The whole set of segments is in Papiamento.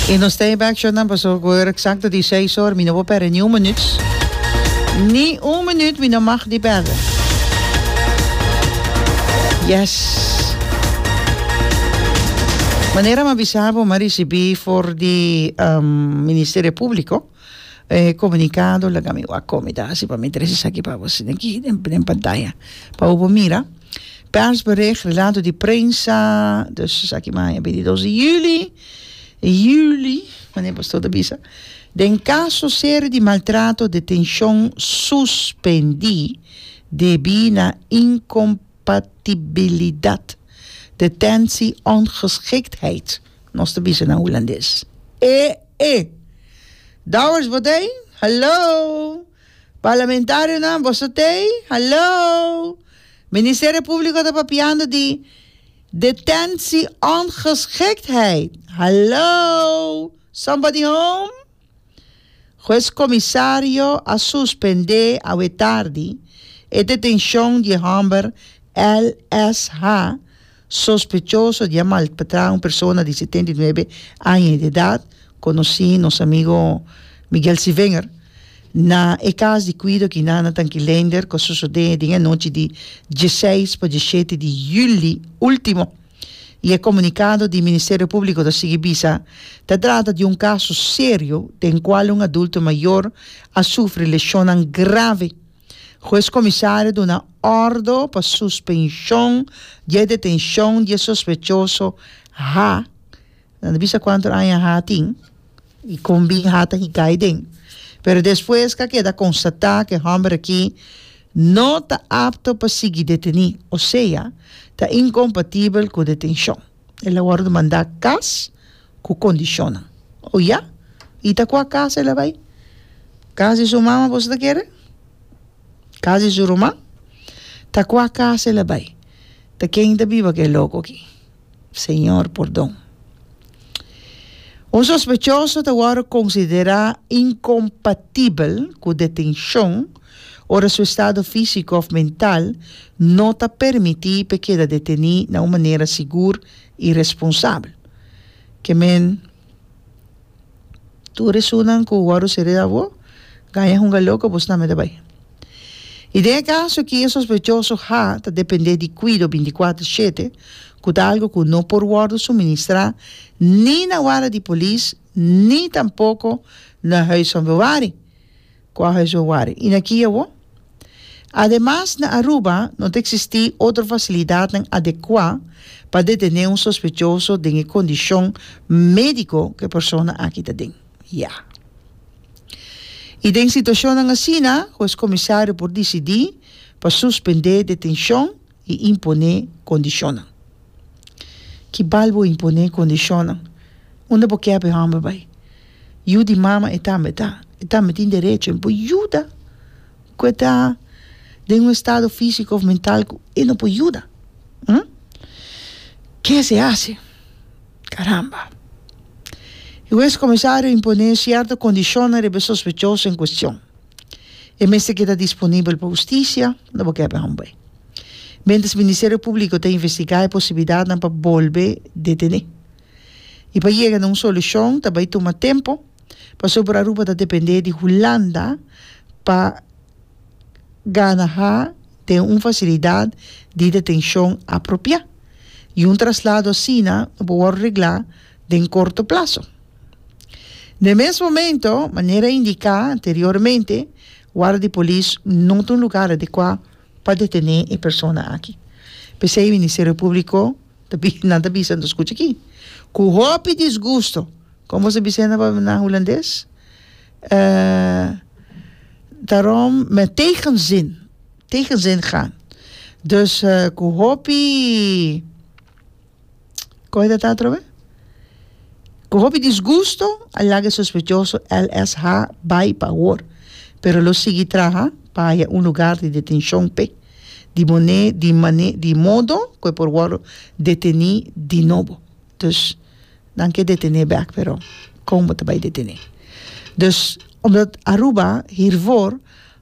Y nos ta hiba accion nan paso cu ora exacto di seis or mi no por perde ni un minuut. Ni un minuut mi no mag di perde. Yes. Manera mi a bisa bo mi a ricibi for di um, Ministerio Publico. Eh comunicado laga mi wak komi ta hasi pa mi tres esaki pa bo sina aki den den pantaya pa bo por mira persbericht relato di prensa dus esaki maya bintidos di juli juli mane pastoor ta bisa den caso serie di maltrato detencion suspendi debi na incompatibilidad detentie ongeschiktheid. Nos ta bisa nan hulandes. E e! Dowers bo tei? Hallo! Parlamentarionan boso tei? Hallo! Ministerio Publico ta papiando di detentie-ongeschiktheid. Hallo! Somebody home? Hues Comisario a suspendé awetardi e detencion di e homber L.S.H. sospechoso di a maltrata un persona di setenta i nuebe aña di edad, conoci nos amigo Miguel Sivenger, na e cas di cuido Kinana Tankilender cu a sosode den e nochi di dieseis pa dieshete di juli ultimo. y e comunicado di Ministerio Publico ta sigui bisa, ta trata di un caso serio den cual un adulto mayor a sufri lesionnan grave. Hues comisario duna ordo pa suspension di e detencion di e sospechoso ha. Nan ta bisa cuanto aña ha tin y con bin ha ta hikai den. Pero despues ca keda constata cu e homber aki no ta apto pa sigui deteni, osea ta incompatibel cu detencion. El a wordo manda cas cu condicionnan. Oh ya? Y ta cua cas el a bay? Cas di su mama boso ta kere? Cas di su ruman? Ta cua cas el a bay? Ta ken ta biba cu e loco aki? Señor pordon. Un sospechoso ta wòrdu konsiderá inkompatibel ku detenshon ora su estado físiko òf mental no ta permití pa e keda detení na un manera sigur i responsabel. Ke men. tur e sunan ku wòru siré awor gaña hunga loko bo snami ta bai. I den e kaso aki e sospechoso ha ta dependé di kuido bintikwatro shete ku ta algu ku no por wòrdu suministrá ni na wara di polis ni tampoko na huis van bewari. Quaha su wari i na ki awor? Ademas na Aruba no ta eksistí otro fasilidatnan adekuá pa detené un sospechoso den e kondishon médiko ku e persona aki ta den. Ya. I den situashonnan asina, hues komisario por disidí pa suspendé detenshon i imponé kondishonnan. Ki bal bo imponé kondishonnan? Unda bo kep e hòmber bai? Yu di mama e tambe ta, e tambe tin derecho e por yuda ku e ta den un estado físiko òf mental ku e no por yuda. Ke esei hasi? Karamba! Hues kuminsá a imponé sierto kondishonnan riba e sospechoso en kuestion. E mester keda disponibel pa hustisia, no bo kèp e hòmber. Miéntras Ministerio Públiko ta investigá e posibilidatnan pa bolbe detené. I pa yega na un solushon ta bai tuma tempu, pasobra por Aruba ta dependé di Hulanda pa gana ha den un fasilidat di detenshon apropiá. I un traslado asina no por wòrdu reglá den korto plaso. n'e mes momento manera indica anteriormente warda di polis no ta un lugar adecua pa detene e persona aki pesey ministerio publico ta bisa nan ta bisa escucha aki cu hopi disgusto como nos ta bisa ena nan hulandes daarom met tegenzin tegenzin gaan dus cu hopi Koe ta ta atrobe? Ku hopi disgusto a laga e sospechoso LSH bai pa awor, pero lo sigui traha pa haña un lugar di detenshon p'e, di mon'é di mane di modo ku e por wòrdu detení di nobo. Dus nan ke detené bèk pero kon bo ta bai detené? Dus omdat Aruba, Hirvor,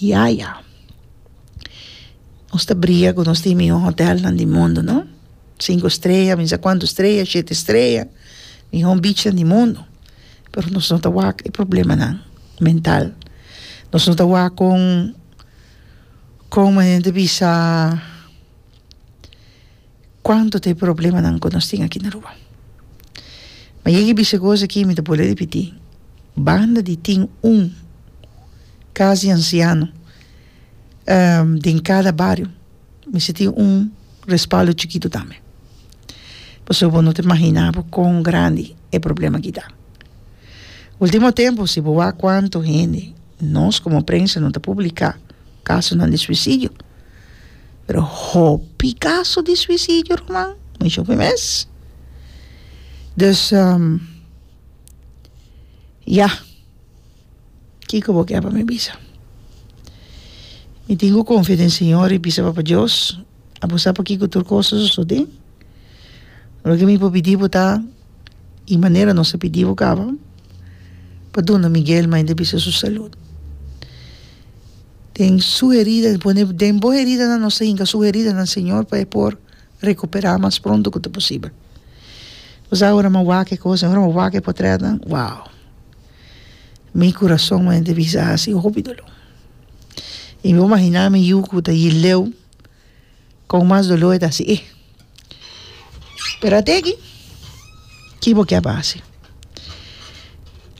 Yaya. Nos ta briga cu nos tin miho hotelnan di mundu, no? Cinco strella, mi sa cuanto strella, shete strella, miho beachnan di mundu. Pero nos no ta wak e problemanan mental. Nos no ta wak con, con men e ta bisa. Cuanto ta e problemanan cu nos tin aki na Aruba. Ma yega y bisa e cos aki, mi ta bole repiti, banda di tin un cas di anciano den cada bario, mester tin un respaldo chikito tambe. Pasobra bo no ta imagina bo con grandi e problema aki ta. Ultimo tempo si bo wak cuanto hende nos como prensa no ta publica. kasonan di suisidio pero hopi kaso di suisidio ruman mucha hopi mes dus ya kiko bo kier pa mi bisa mi tin ku konfia den señor y bisa papa dios abo sa p'e tur kos a sosode loke mi por pidi bo ta. y manera nos a pidibo caba pa duna Miguel ma hende bisa su salud den su herida el pone den bo heridanan nos ta hinca su heridanan Señor pa e por recupera mas pronto cu ta posibel pues aora mi a wak e cosa aora mi a wak e potretnan wao mi curason mi a hende bisa hasi hopi dolor y mi a imagina mi yu cu ta yileu. Con mas dolor ta hasi e. Pero ate aki, ki bo kiaba hasi?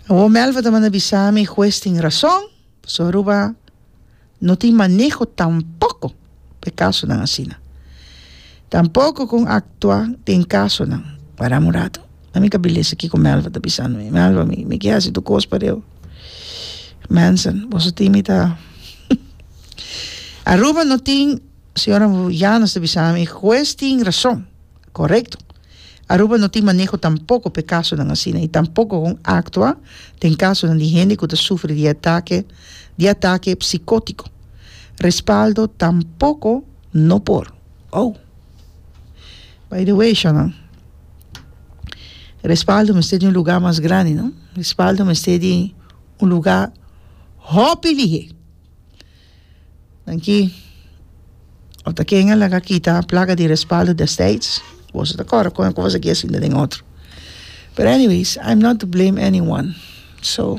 Awor Melva ta manda bisa mi e hues tin rason, pasobra Aruba no tin maneho tampoco pa e casonan asina. Tampoco con actua den casonan, waramu un rato. A mi ka bilesa kiko Melva ta bisa no e Melva mi mi ke hasi tur kos pa deo Manson boso tin mi ta Aruba no tin señora Llanos ta bisa mi hues tin rason korekto Aruba no tin maneho tampoko p'e kasonan asina i tampoko kon aktua den kasonan di hende ku ta sufri di atake di atake psikotiko respaldo tampoko no por oh by the way shona. Respaldo mester di un lugá mas grandi, no? Respaldo mester di un lugá hopi lihé. Nanki, ora ta ken a laga kita plaga di respaldo destijds, boso ta kòrda kon e kos aki a sinta den otro. Pero anyways, I'm not to blame anyone. So.